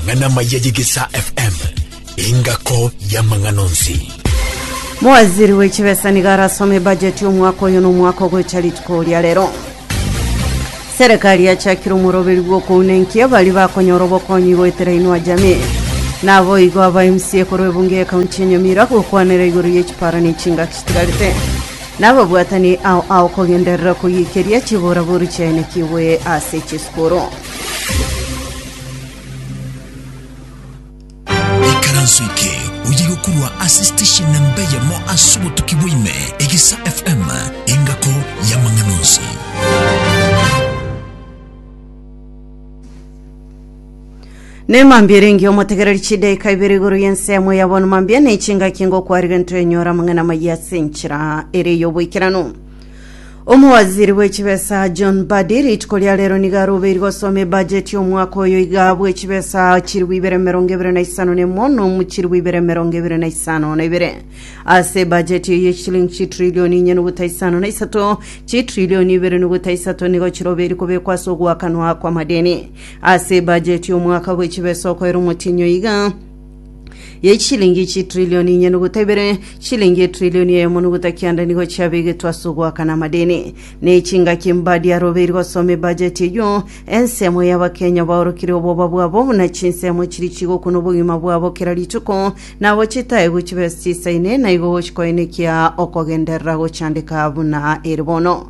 Ng'ana maya y'Egesaa FM, engako y'amang'ana onsi. Mowaziri w'echibesa nigo arasome ebajeti y'omwaka oyo n'omwaka ogocha rituko ria rero. Serikali yachakire omoroberi bw'okouna enkia baria bakonyora obokonyi goetera Inua Jamii. Naboigo aba MCA korwa ebunge y'ekaunti ya Nyamira gokwanera igoro y'echipara n'echingaki chitigarete. Nababwatani ao ao kogenderera koyikeria chiboraboru chiaye nekiwe ase chisukuru. Ikaranso eke oye gokorwa ase station namba eyemo ase obotuki bwaime, Egisa FM, engako y'amang'ana onsi. nemambia erenge omotegereri chidaika ibere igoro y'ense yamwe yabona mambia nechinga kingo kwarire ntoenyora amang'ana maye ase enchera ere y'oboikeranu Omowaziri bwe chibesa John Mbadi rituko ria rero nigo arobeirwe gosoma ebajeti y'omwaka oyo iga bwe chibesa chilifu ibere emerongo ebere na isano na emo nomu chilifu ibere emerongo ebere na isano na ibere ase ebajeti eye chilingi chitrilioni inye nuguta isano na isato chitrilioni ibere nuguta isato nigo chirobeiri kobekwa ase ogoakanwa kw'amadeni ase ebajeti y'omwaka bwe chibesa okoera omotinyi oiga ye chilingi chitrilioni inye nuguta ibere chilingi etrilioni eyemo nuguta kianda nigo chiabegetwe ase ogoakana amadeni ne chingaki mbadi arobeiri gosoma ebajeti eyio ensemo y'abakenya baorokire oboba bwabo buna chinsemo chiri chigokuna obogima bwabo kera rituko nabo chitae gochibesa chisaine naigo gochikoenekia okogenderera gochandeka buna ere bono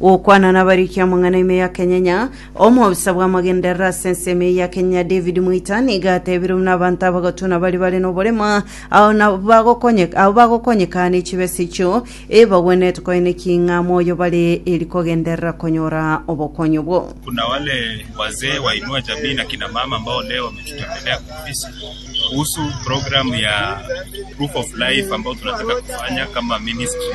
Gokwana nabariki amang'ana ime ya Kenyenya, omobisa bw'amagenderero ase ense ime ya Kenya David Mwita nigo atebire buna abanto abagotuna baria bare noborema ao na bagokonyeka ao bagokonyeka ne chibesa echio ebagwenerete koene ki ng'a moyo bare eri kogenderera konyora obokonyi obwo. Kuna wale wazee wainua jamii na kina mama ambao leo wametutembelea kwa ofisi kuhusu programu ya proof of life ambayo tunataka kufanya kama ministry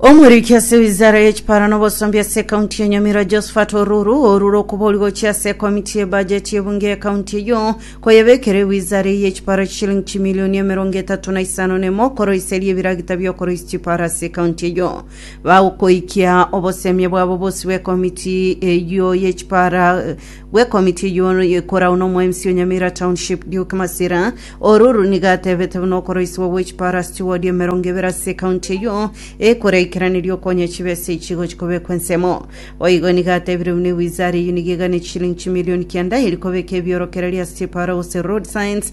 Omoriki ase wizara ye chiparo na obosombi ase ekaunti ya Nyamira Josephat Oruru orure okobori gochia ase ekomiti ye bajeti y'ebunge y'ekaunti eyio koyebekera ewizara eyio echiparo chishilingi chimilioni emerongo etato na isano na emo koroiseria ebiragita bi'okoroisia chiparo ase ekaunti eyio bagokoikia obosemia bwabo bosio bw'ekomiti eyio ye chiparo bw'ekomiti eyio ekoragwa n'omoemisi o Nyamira Township, Duke Masira Oruru, nigo atebete buna okoroisiwa gwe chipara steward emerongo ebere ase ekaunti eyio ekoraikeraneria okonya chibesa echi gochia kobekwa ensemo. Boigo nigo atebire buna ewizara eyio nigo egane chiliingi chimilioni kianda eria kobeka ebiorokereria ase chipara gose road signs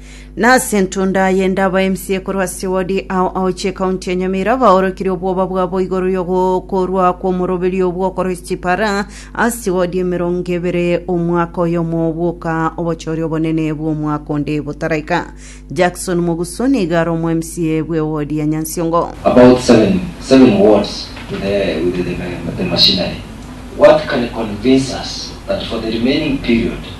Nase entundo aye ndabaemsie korwa ase wodi ao ao chi'ekaunti ya Nyamira baorokirie obwoba bwabo igoro y'ogokorwa kw'omoroberio bw'okoroisia chipara ase wodi emerongo ebere omwaka oyomo bwoka obochori obonene bw'omwaka onde botaraika. Jackson Moguso nigo are omo-MCA bw'ewodi ya Nyansiongo. About seven seven words to the with the the machinery what can convince us that for the remaining period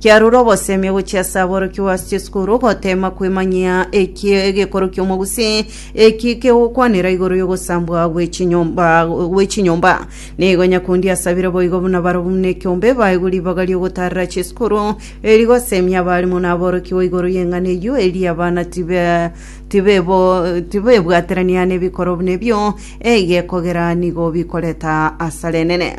Kiarure obosemi ogochia ase aborokigwa ase chisukuru goteema kwemanyia eki egekoro ki'omogusii eki kegokwanera igoro y'ogosambwa gw'echinyomba gw'echinyomba. Nigo Nyakundi asabire boigo buna barabwo buna ekiombe baegwe ribaga ri'ogotaarera chisukuru eri gosemia abaalimu na aborokigwa igoro y'eng'ana eyio eria abana tibe tibebo tibebwaterania nebikorwa buna ebio egekogera nigo bikoreta asara enene.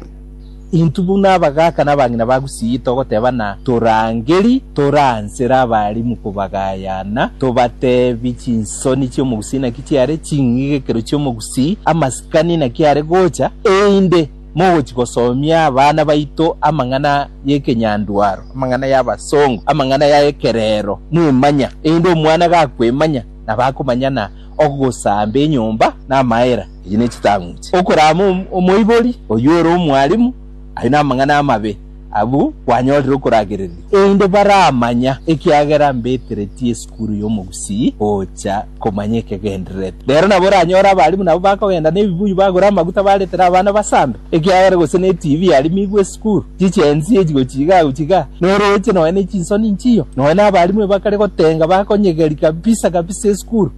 Intwe buna abagaaka na abang'ina ba Gusii togoteebana torangerie, toransere abarimu kobagayana, tobateebie chinsoni chi'Omogusii naki chiare, ching'egekero chi'Omogusii, amasikani naki are gocha, erinde mogochia gosomia abana baito amang'ana y'ekenyandwaro, amang'ana y'abasongo, amang'ana ya ekereero, mwemanya, erinde omwana gakwemanya, nabo akomanyana Ogosamba enyomba namaera, echi nechitang'uche. Okorama omoibori oyio ore omwalimu, ayio namang'ana amabe, abwo kwanyorire okoragereria. Erinde baramanya, ekiagera mbeteretie esukuru y'omogusii gocha komanya ekegendererete. Rero nabo oranyore abalimu nabo bakogenda nebibuyu bagore amaguta baretere abana basambe. Ekiagera gose ne TV yarimigwe esukuru, chichensi echi gochia iga agochia iga, noroche nonya ne chinsoni inchiyo, nonya na abarimu ebakare gotenga bakonyegeri kabisa kabisa esukuru.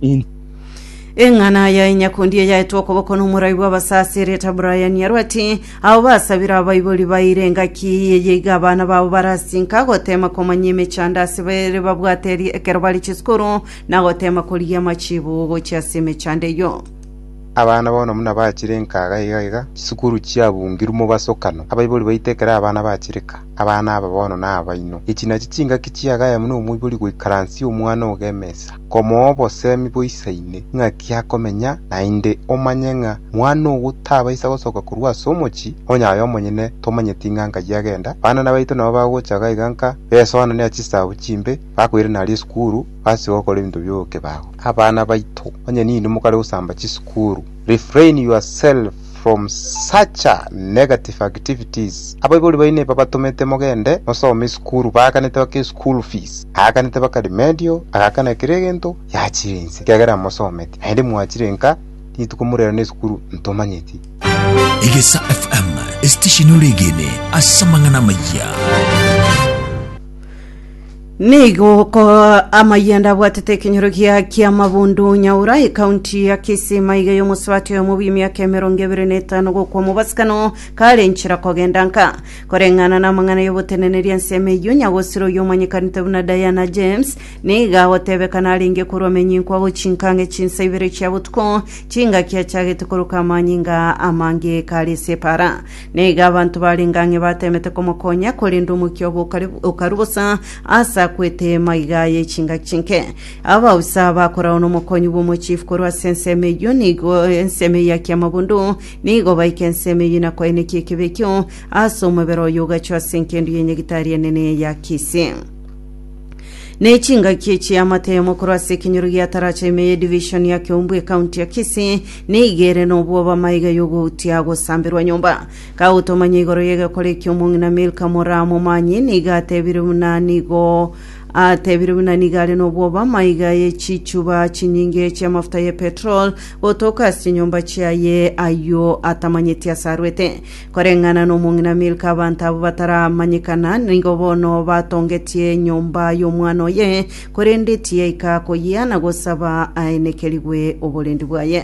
Eng'ana ya Inyakundi eyaetwe okoboko n'omorai bw'abasaasi erieta Brian yarwa ati, Abo basabire abaibori baeire engaki eye iga abana babo barasinka goteema komanya emechando ase bare babwate eri ekero bare chisukuru na goteema korigia amachibo gochia ase emechando eyio. Abana bono buna bachire nkaga iga iga, chisukuru chiabungirwe mobasokano, abaibori baito ekero abana bachireka, abana aba bono nabaino. Echi nachi chingaki chiagayemo nomoibori goikaransia omwana ogo emesa, komoa obosemi boisaine ng'aki akomenya naende, omanye ng'a mwana ogo tabaisa gosoka korwa ase omochie onye aye omonyene tomanyeti ng'a nkayi agenda, abana nabaito nabo bagocha iga iga nka besoananeria chisagu chimbe, Bakoirana aria esukuru, basiba gokora ebinto bi'okebago. Abana baito, onye ninwe mokare gosamba chisukuru, refrain yourself from such a negative activities. Abaibori baino ebabatomete mogende mosome esukuru, baakanete baka eschool fees, aakanete baka remedial, agakana kera egento, yachire inse ekiagera mosometi, naende mwachire nka rituko morera nesukuru ntomanyeti. Egesa FM, esitesheni ore egene ase amang'ana amaya. Nigo okooa amayanda abwatete ekenyoro gia ki'amabundu Nyaura, ekaunti ya Kisii, maiga y'omosubati oyomo bw'emiaka emerongo ebere na etano gokwa omobasicano kare enchera kogenda nka. Koreng'ana namang'ana y'oboteneneri ensemo eyio, nyagosiro oyio omanyekanete buna Diana James, nigo agotebeka narenge korwa menyinkwa gochinka ang'e chinsa ibere chia botuko, chingaki achagete koroka amanyinga amange kare ase epara. Na igo abanto barenge ang'e bateemete komokonya, korende omokia obo okari- okarua bosa aase akwete maiga aye chingaki chinke. Abagusa bakoragwa nomokonyi bw'omochifu korwa ase ensemo eyio, nigo ensemo eyio akia amabundu, nigo baike ensemo eyio inakoenekie ekebe ekio ase omobere oyo ogachwa ase engendu ye nyagitari enene ya Kisi. ne chingaki echi amatemo korwa ase ekenyoro gia taracha ime ye division ya Kiombu ekaunti ya Kisii neigere nobwoba amaiga y'ogoutia agosamberwa nyomba kagotomanya igoro y'egekora ekio omong'ina Milka Moraa momanyi niga atebire buna nigo atebire buna niga are nobwoba amaiga ye chichuba chinyinge chia amafuta ye petrol gotoka ase chinyomba chiaye ayio atamanyeti ase arwete Koreng'ana nomong'ina Milka abanto abwo bataramanyekana nigo bono batongetie enyomba y'omwana oye, korende tiyaika koyia na gosaba aenekerigwe oborendi bwaye.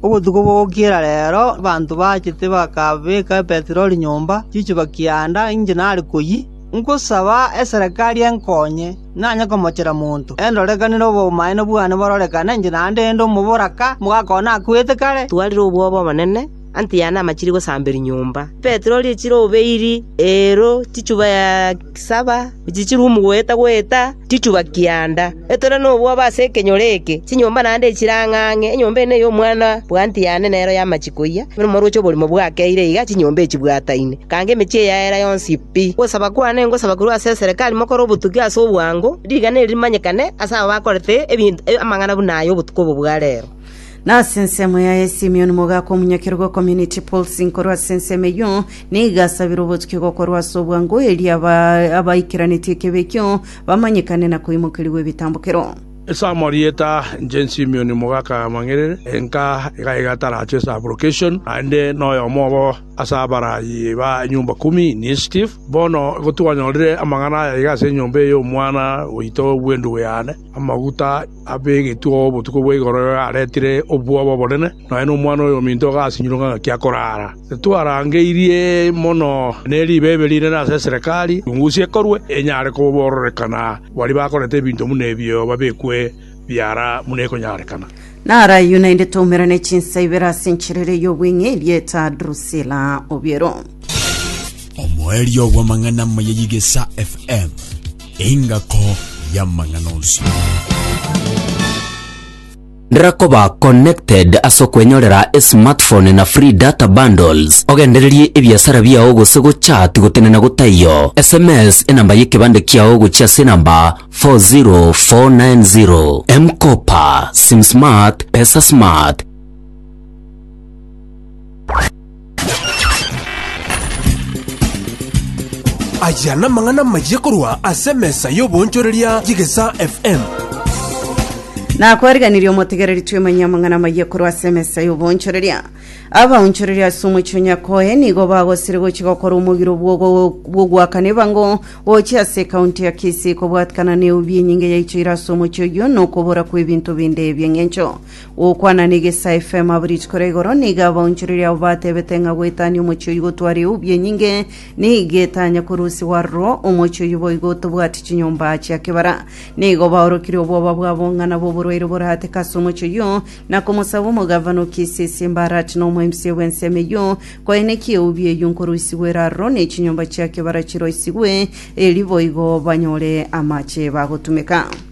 Obotuko bw'ogokiera reero abanto bachete bakabeka Petero rinyomba chi'echiba kianda inche nare koyia. Ngosaba eserekari enkonye, nanye komochera monto, endorekanere obomaene bwane bororekane inche naende inde omoboraka, omogaka one akwete kare. Twarire obwoba obonene, Antiano amachiri gosamberi nyomba, Petero richire obeiri eero chichuba saba, echichire omogweta‐gweta chichuba kianda. Etore nobwoba ase ekenyoro eke, chinyomba naende echire ang'e ang'e, enyomba ende ney'omwana bwa Antiano nero y'amache koyia, nomoroche oborimo bwakeire iga chinyomba echi chibwataine, ekange emechie yaera yonsi pi. Gosaba kwane ngosaba korwa ase eserekari mokore obotugi ase obwango, rigana eri rimanyekane ase abo bakorete amang'ana buna aya obotuko obo bwa reero. Nase ensemo yaye Simion mogaaka omonyakerogo o Community Pulsing korwa ase ensemo eyio, nigo asabire obotukia gokorwa ase obwango erio aba- abaikeranetie ekebe ekio bamanyekane na koimokerigwa ebitambokero. Ase amarieta inche Simion mogaaka amang'erere, enka iga iga atarache ase application, naende noyomo obo ase abarayi ba Nyumba Kumi, Initiative. Bono igo twanyorire amang'ana aya iga ase enyomba eye y'omwana oito bw'endugu yane, amaguta, Abegetwe oo botuko bwa igoro ere aretire obwoba obonene, nonya nomwana oyominto agasinyurwa ng'a gaki akoraara. Titwarangeirie mono ne ribeebe rinene ase eserekari, chungusi ekorwe, enyare kobororekana baria bakorete ebinto buna ebio babekwe biara buna ekonyarekana. Narayio naende toumera ne chinsa ibere ase enchera ere y'obweng'e erieta Drusila Obiero. Omoerio bw'amang'ana amaya y'Igesa FM. Engako y'amang'ana onsi. Rera koba connected ase okwenyorera esmartphone na free data bundles, ogendererie ebiasara biao gose gochat gotenena gotaiyo. SMS enamba y'ekebande kiao gochia ase enamba 40490. M-Kopa, SimSmart, PesaSmart. Aya namang'ana amayia korwa ase emesa y'oboonchoreria y'Egesaa FM. Nakwariganirie omotegereri twemanye amang'ana amayia korwa ase emesa y'oboonchoreria abaonchoreria ase omochie onyakoe nigo bagosire gochia gokora omogiro bw'ogo- bw'ogoakana ebango gochia ase ekaunti ya kisii kobwatikana na eubi enyinge yaichoire ase omochie oyio na okobora kw'ebinto binde ebi'eng'encho Gokwana negesae efemo abo rituko ria igoro, nigo abaonchoreria abo batebete ng'a goetania omochie oyio gotware eubi enyinge, nigo etanya korusigwa aroro omochie oyio boigo otobwati chinyomba chia kebara. Nigo baorokire obwoba bwabo ng'a nabo oborwaire borateke ase omochie oyio, na komosaba omogavana o Kisisi Mbarati na omoemisia bw'ensemo eyio, koeneki eubi eyio nkorusigwa ere aroro, ne chinyomba chia kebara chiroisigwe, erio boigo banyore amache bagotumeka.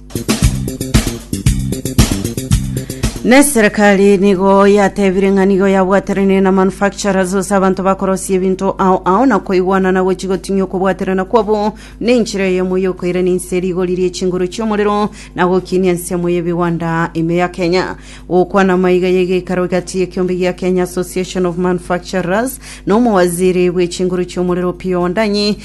Na eserekari nigo yatebire ng'a nigo yabwateranie na manufacturers gose abanto bakorosia ebinto ao ao na koigwana na gochi gotinyia okobwaterana kwabo na enchera eyemo y'okoirania ense rigori rie chinguru chi'omorero na gokinia ensemo y'ebigwanda ime ya Kenya. Gokwana maiga y'egeikaro gati y'ekiombe gia Kenya Association of Manufacturers na omowaziri bw'echinguru chi'omorero Opiyo Wandayi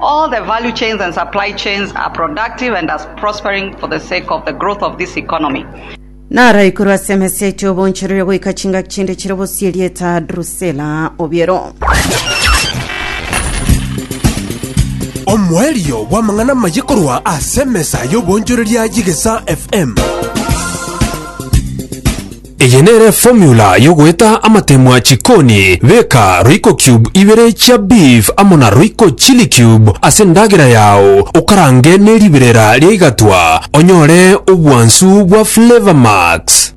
All the value chains and supply chains are productive and as prospering for the sake of the growth of this economy. Naro ikorwa ase emeseti oboncherere goika chingaki chinde chire bosie erieta Drusela Obiero. omoerio bw'amang'ana amaye korwa ase emesa y'obonchoreria y'egesa fm Eye nere formula yogoeta amatemwa chikoni, beka royco cube ibere chia beef amo na royco chili cube ase endagera yao okarange ne riberera ria igatwa onyore obwansu bwa flavor max.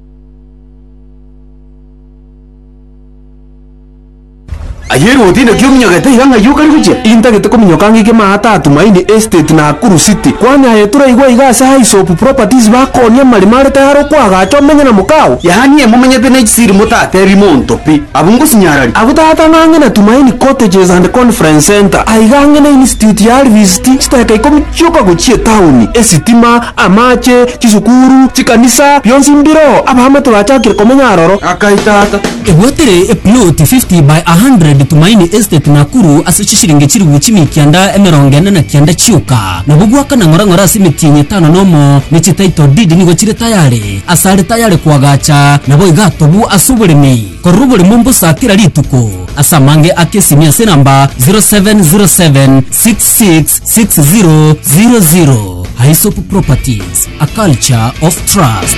Aye roti naki ominyogete iga ng'ai okare gochia? Intagete kominyoka ng'ike maa Taatumaini Estate Nakuru City. Kwani aye toraigwa iga ase Hyssop Properties bakonia amarimo are tayari okoagacha omenye na mokao? Yaani aye momenyete ne chisiri motatebi monto pi. Abwo ngosinyararia. Abwo tata ng'ang'e na Tumaini Cottages and Conference Centre. Aiga ang'e na Institute ya Alvist, chiteka ikomi chioka gochia etaoni, esitima, amache, chisukuru, chikanisa, bionsi mbiroo. Abamate bachakire komenya aroro. Akai tata. Ebwatere eploti 50 by 100 Tumaini Estate Nakuru ase chisiringi chilifu chimia kianda emerongo ene na kianda chioka. Nabo gwakana ng'ora ng'ora ase emetienyi etano nomo ne chititle deed nigo chire tayare. Ase are tayare koagacha nabo igatobu ase oboremi korora oboremo mbosa kera rituko. Ase amange ake simia ase enamba 0707 66 60 00. Aesop Properties, a culture of trust.